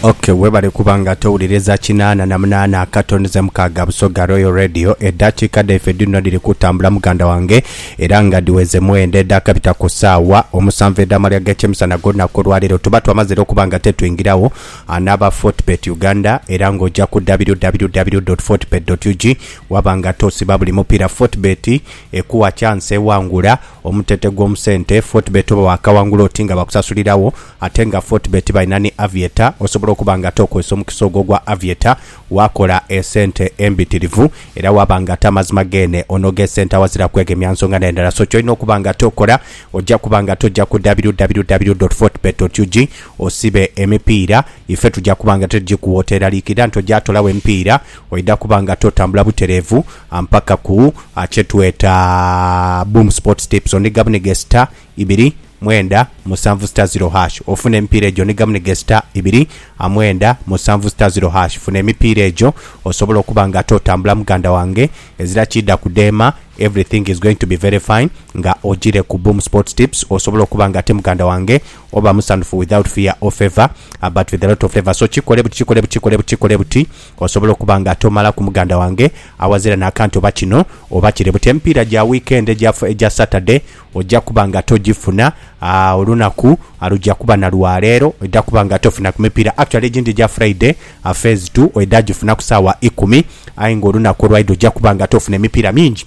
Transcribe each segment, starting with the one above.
Ok webale kuba nga towuliriza kinaana na munaana akato nize mukaaga Busoga Royal Radio edaakiika dhaife dhino dhiri kutambula muganda wange era nga dhiweze mwenda edhaakabita ku saawa omusanvu edh'amalya g'ekyemisana g'olunaku olwaleero tuba twamazire okuba nga tetwingirawo ah, n'aba Fortbet Uganda era ng'oja ku www.fortbet.ug waba nga tosiba buli mupiira Fortbet ekuwa chance ewangula Omutente gw'omusente, Fortebet oba waakawangula oti nga bakusasuliragho ate nga Fortebet balina ni Aviator, osobola okuba ng'ate okozesa omukisa ogwo ogwa Aviator waakola esente embitirivu era waaba ng'ate amazima geene onoga esente awazira kwegemya nsonga n'endala. So ky'olina okuba ng'ate okola, oja kuba ng'ate oja ku www.fortebet.ug osibe emipiira, ife tuja kuba ng'ate tugikuwa oteeraliikirira nti oja toolagho emipiira, oidha kuba ng'ate otambula butereevu. Ampakaku kye tweta Boom Sports Tips ondiga bunige star ibiri mwenda musanvu star zero hash ofune emipiira egyo ondiga bunige star ibiri mwenda musanvu star zero hash funa emipiira egyo osobole okuba nga ate otambula muganda wange ezira kiidha kudheema everything is going to be very fine nga ojire ku Boom Sports Tips osobole okuba nga ate muganda wange oba musanhufu without fear or favour but with a lot of favour so kikole buti kikole buti kikole buti kikole buti Osobola okuba nga tomalaku muganda wange awazira n'akantu oba kino oba kire but emipiira gya wiikendi egya egya Saturday oja kuba nga togifuna aa olunaku luja kuba na lwa leero oidha kuba nga tofuna ku mipiira actually egindi egya Friday aa phase two oidha gifuna ku saawa ikumi aye nga olunaku olwaidha oja kuba nga tofuna emipiira mingi.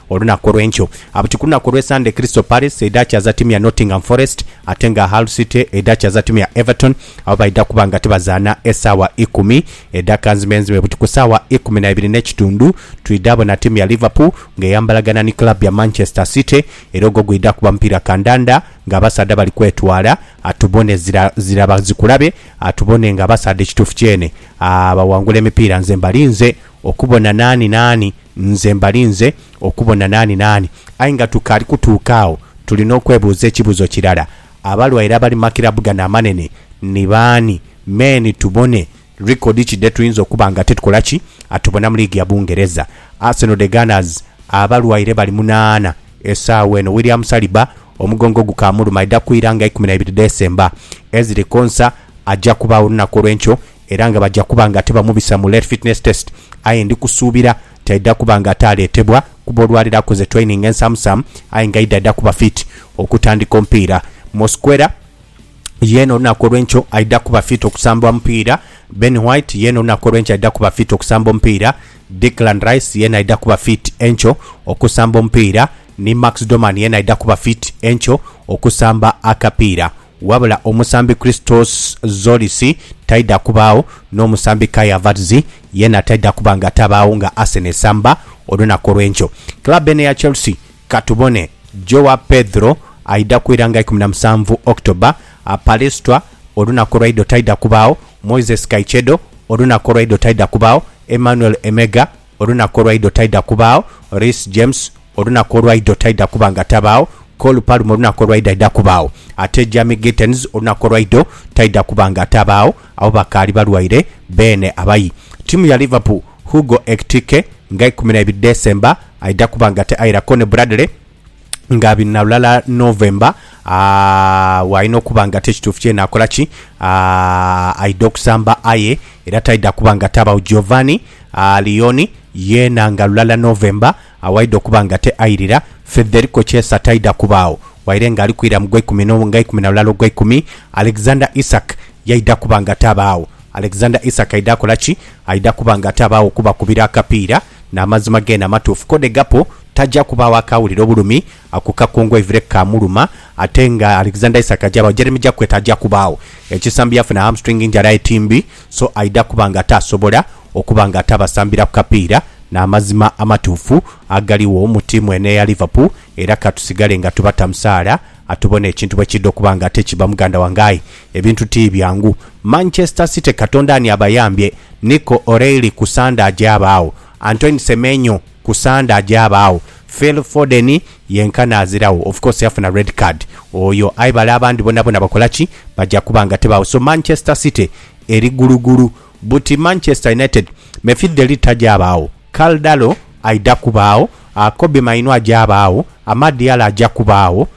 Olunaku olw'enkyo, Abuti ku lunaku olw'Esande Crystal Palace eidhakyaza tiimu ya Nottingham Forest ate nga Hull City eidhakyaza tiimu ya Everton abo baidha kuba nga tibazaana esaawa ikumi edhaka nzimenzime buti ku saawa ikumi na ibiri n'ekitundhu twidha bona tiimu ya Liverpool nga eyambalagana ni club ya Manchester City era ogwo gwidha kuba mupiira kandanda nga abasaadha bali kwetwala atubone zira zira bazikulabe atubone nga abasaadha ekituufu kyene aah bawangula emipiira nze mbalinze okubona naani naani Nze mbalinze okubona naani naani. Aye nga tukaali kutuuka agho, tulina okwebuuza ekibuuzo kirala, Abalwaire abali mu makirabu gano amanene ni baani? Me ni tubone likodi ki dhe tuyinza okuba nga titukola ki? A Tubona mu liigi ya Bungereza, Arsenal The Gunners abalwaire bali munaana esaawa eno. William Saliba omugongo gukaamuluma, aidha kwira nga ikumi na ibiri dheesemba. Ezri Konsa aja kubagho olunaku olw'enkyo Era nga baja kuba nga tibamubisa mu Late Fitness Test aye ndi kusuubira nti aidha kuba nga ate aleetebwa kuba olwaleero akoze training ensamusamu aye nga aidha dha kuba fit okutandika omupiira. Mosquera yeena olunaku olw'enkyo aidha kuba fit okusamba omupiira. Ben White yeena olunaku olw'enkyo aidha kuba fit okusamba omupiira. Declan Rice yeena aidha kuba fit enkyo okusamba omupiira ni Max Doman yeena aidha kuba fit enkyo okusamba akapiira. Wabula omusambi Christos Zolis taidha kubaagho n'omusambi Kai Havertz yeena taidha kuba nga tabaagho nga Arsenal esamba olunaku olw'enkyo. Club eno eya Chelsea ka tubone Joao Pedro aidha kwira nga ikumi na musanvu October, Palestra olunaku olwaidho taidha kubaagho, Moises Caicedo olunaku olwaidho taidha kubaagho, Emmanuel Emega Olunaku olwaidho taidha kubaagho, Reece James, Olunaku olwaidho taidha kuba nga tabaagho, Cole Palmer, Olunaku olwaidho aidha kubaagho, ate Jamie Gittens, Olunaku olwaidho taidha kuba nga tabaagho, abo bakaali balwaire beene. Abayi tiimu ya Liverpool, Hugo Ekitike nga ikumi na ibiri December aidha kuba nga tairaghoko ni Bradley. nga biri na lulala November, aa, bwalina okuba nga ti ekituufu kyene akola ki? Aa, aidha okusamba aye era taidha kuba nga tabawo. Giovanni aa, Leone yeena nga lulala November, aa, waidha okuba nga te airira. Federico Chiesa taidha kubaagho waire nga ali kwira mu gweikumi no, nga ikumi na lulala ogweikumi. Alexander Isak yaidha kuba nga tabaagho. Alexander Isak aidha kola ki? Aidha kuba nga atabaagho kubakubira akapiira. N'amazima geene amatuufu, kode Gakpo taja kubaagho akaawulira obulumi ku kakungu eivire ke kaamuluma. Ate nga Alexander Isak aja baagho, Jeremy Jacquet aja kubaagho. Ekisambi yafuna hamstring injury aye ti mbi, so aidha kuba nga ataasobola okuba nga atabasambira ku kapiira. N'amazima amatuufu agaligho mu tiimu eno eya Liverpool era ka tusigale nga tubata musaala tubone ekintu bwe kiidha okuba nga ate kibba muganda wange. Aye Ebintu ti byangu. Manchester City Katonda ani abayambye? Nico O'Reilly ku Sande aje abaagho. Antoine Semenyo ku Sande aje abaagho. Phil Foden yenkana aziragho. Of course yafuna red card oyo aye bale abandi bonabona bakola ki? Baja kuba nga tibaagho. So Manchester City eri gulugulu. Buti Manchester United, Mefith De Ligt taja abaagho. Karl Darlow aidha kubaagho. Kobbie Mainoo aja abaagho. Amad Diallo aja kubaagho.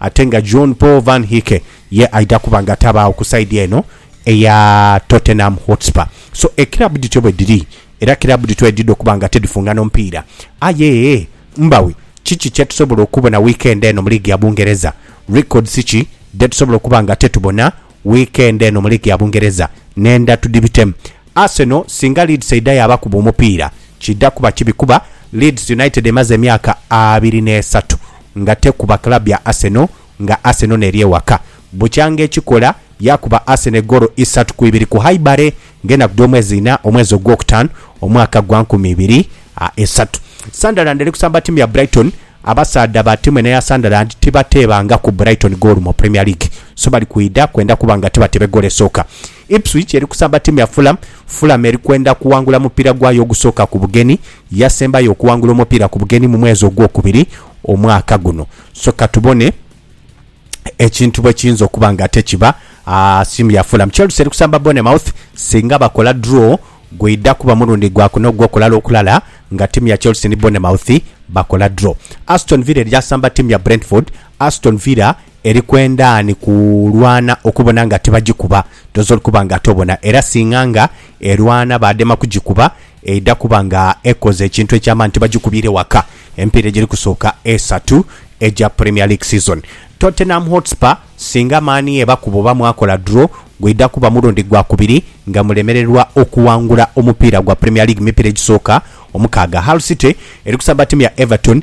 Ate nga John Paul Van Hecke ye aidha kuba nga tabaagho ku saidi eno eya Tottenham Hotspur. So ekirabu dhityo bwe dhiri era kirabu dhityo edhidha okuba nga tidhifungana omupiira. Aye mbawi kiki kye tusobola okubona wiikendi eno mu liigi ya Bungereza? Records ki dhe tusobola okuba nga tetubona wiikendi eno mu liigi ya Bungereza? Nhenda tudhibitemu. Arsenal singa Leeds eidha yaabakuba omupiira, kiidha kuba kibi kuba Leeds United emaze emyaka abiri n'esatu nga tekuba club ya Arsenal nga Arsenal n'eri ewaka. Bukyanga ekikola yaakuba Arsenal egoolo isatu ku ibiri ku Highbury ng'enaku dh'omwezi ina omwezi ogwokutaanu omwaka gwa nkumi ibiri a esatu. Sunderland eri kusamba ttiimu ya Brighton. Abasaadha ba ttiimu eno eya Sunderland tibateebangaku Brighton goolo mu Premier League so bali kwidha kwenda kuba nga tibateeba egoolo esooka. Ipswich eri kusamba ttiimu ya Fulham. Fulham eri kwenda kuwangula mupiira gwayo ogusooka ku bugenyi. Yasembayo okuwangula omupiira ku bugenyi mu mwezi ogwokubiri omwaka guno. So katubone ekintu bwe kiyinza okuba ng'ate kiba ttiimu ya Fulham. Chelsea eri kusamba Bournemouth. Singa bakola draw, gwidha kuba mulundi gwa kuna ogw'okulala okulala nga ttiimu ya Chelsea ni Bournemouth bakola draw. Aston Villa eri asamba ttiimu ya Brentford. Aston Villa Eri kwenda ni kulwana okubona nga tibagikuba, dhoozi olikuba nga tobona. Era singa nga erwana baadema kugikuba, eidha kuba nga ekoze ekintu eky'amaani tibagikubiire waka emipiira egiri kusooka esatu egya Premier League season. Tottenham Hotspur singa maani ebakuba oba mwakola draw, gwidha kuba mulundi gwa kubiri nga mulemererwa okuwangula omupiira gwa Premier League mu mipiira egisooka omukaaga. Hull City eri kusamba ttiimu ya Everton.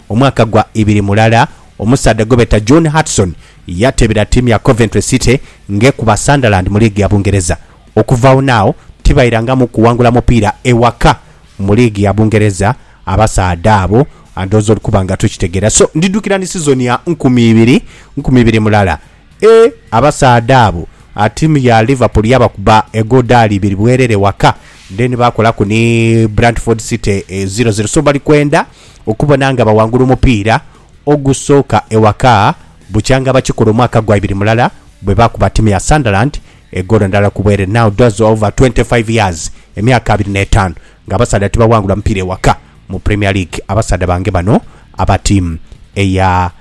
Omwaka gwa ibiri mulala, omusaadha gwe beta John Hartson yateebera tiimu ya Coventry City ng'ekuba Sunderland mu liigi ya Bungereza. Okuvaagho n'agho tibairangamu kuwangula mupiira ewaka mu liigi ya Bungereza abasaadha abo, ndhooza oli kuba nga tokitegeera. So, ndidhukira ni sizoni ya nkumi ibiri, nkumi ibiri mulala. Eeh, abasaadha abo tiimu ya Liverpool yabakuba egodaali ibiri bwerere ewaka, then baakolaku ni Brantford City ziro ziro. So, bali kwenda okubona nga bawangula omupiira ogusooka ewaka bukyanga bakikola omwaka gwa ibiri mulala bwe baakuba ttiimu ya Sunderland egoolo ndala ku bweere now does over 25 years emyaka abiri n'etaanu ng'abasaadha tibawangula mupiira ewaka mu Premier League abasaadha bange bano aba ttiimu eya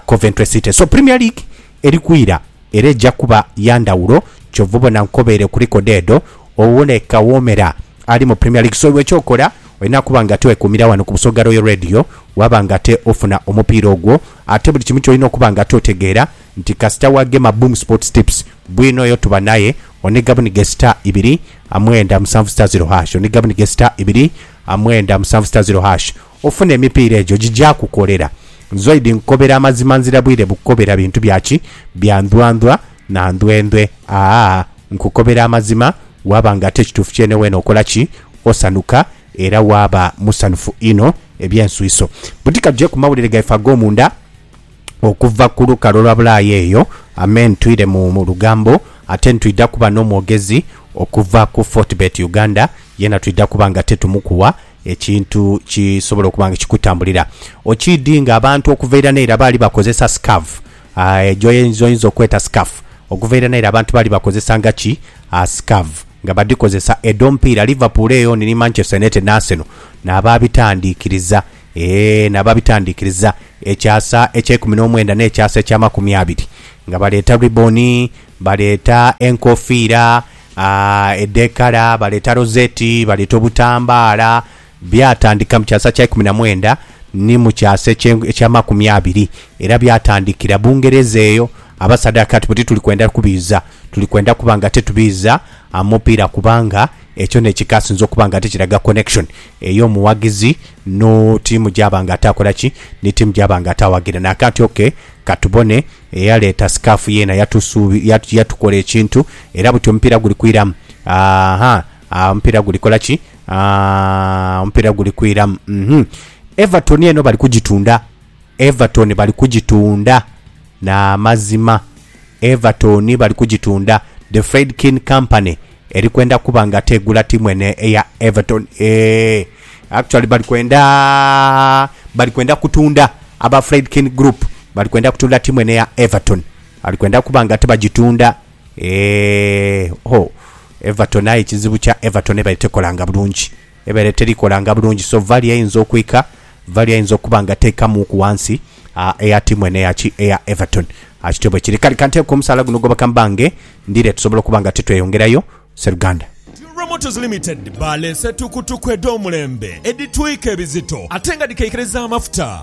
Coventry City so Premier League eri kwira era eja kuba ya ndhawulo. Kyova obona nkobeere ku likodi edho owone Kawomera ali mu Premier League. So iwe ky'okola olina kuba ng'ate wekuumira wano ku Busoga Royal Radio waaba ng'ate ofuna omupiira ogwo. Ate buli kimu ky'olina okuba ng'ate otegeera nti kasita wagema Boom Sports Tips bwino oyo tuba naye oniga buniga sita ibiri mwenda musanvu sita ziro hash, oniga buniga sita ibiri mwenda musanvu sita ziro hash. Ofune emipiira egyo gigyakukolera. Nzoidi nkukobera amazima nzira bwire bukukobera bintu bya ki? Bya ndwandwa na ndwendwe. Aah nkukobera amazima waaba nga ate kituufu kyene weena okola ki? Osanuka era waaba musanhufu inho eby'enswiso. Buti ka tuje ku mawulire gaife ag'omunda okuva ku lukalu olwa bulaaya eyo. Amen. Twire mu lugambo ate nitwidha kuba n'omwogezi okuva ku Fortebet Uganda, yeena twidha kuba nga ate tumukuwa Ekintu kisobola okuba nga kikutambulira okiidhi nga abantu okuva ira n'eira baali bakozesa scarf, aah, gy'oyinza okweta scarf. Okuva ira n'eira abantu baali bakozesanga ki? Aah, scarf, nga badhikozesa edh'omupiira. Liverpool eyo ni ni Manchester United ni Arsenal n'abaabitandiikiriza, eeh, n'abaabitandiikiriza ekyasa eky'eikumi n'omwenda n'ekyasa eky'amakumi abiri, nga baleeta ribbon, baleeta enkofiira. Edhekala, baleeta rozeti, baleeta obutambaala. Byatandika mu kyasa kya ikumi na mwenda ni mu kyasa ekye- eky'amakumi abiri. Era byatandikira Bungereza eyo. Abasaadha bakigamba nti, bwe tituli kwenda kubiiza, tuli kwenda kuba nga titubiiza a mupiira kubanga ekyo n'ekikasinze okuba nga tikiraga connection ey'omughagizi no tiimu gy'aba nga ate akola ki, ni tiimu gy'aba nga ate awagira. Naakanti ok, ka tubone Eyaleeta sikaafu yeena yatusuubi, yatu, yatukola ekintu. Era buti omupiira guli kwiramu. Ah-ha, ah, omupiira guli kola ki? Ah, omupiira guli kwiramu. Mm-hum. Everton eno bali kugitunda. Everton bali kugitunda. N'amazima. Everton bali kugitunda. The Friedkin Company Eri kwenda kuba nga tegula tiimu eno eya Everton eeh actually bali kwenda bali kwenda kutunda aba Friedkin Group bali kwenda kutunda tiimu eno eya Everton bali kwenda kuba nga tibagitunda eeh ho Everton aye ekizibu kya Everton eba tekolanga bulungi. Ebeere terikolanga bulungi so value eyinza okwika, value ayinza okuba nga teikamuuku wansi aa eya tiimu eno eya ki eya Everton aa kityo bwekiri kale kanteeke omusaala guno gwoba kambange ndiire tusobole okuba nga titweyongerayo Sseruganda. Jurra Motors Limited baleese tukutuku edh'omulembe edhitwika ebizito ate nga dhikeikereza amafuta.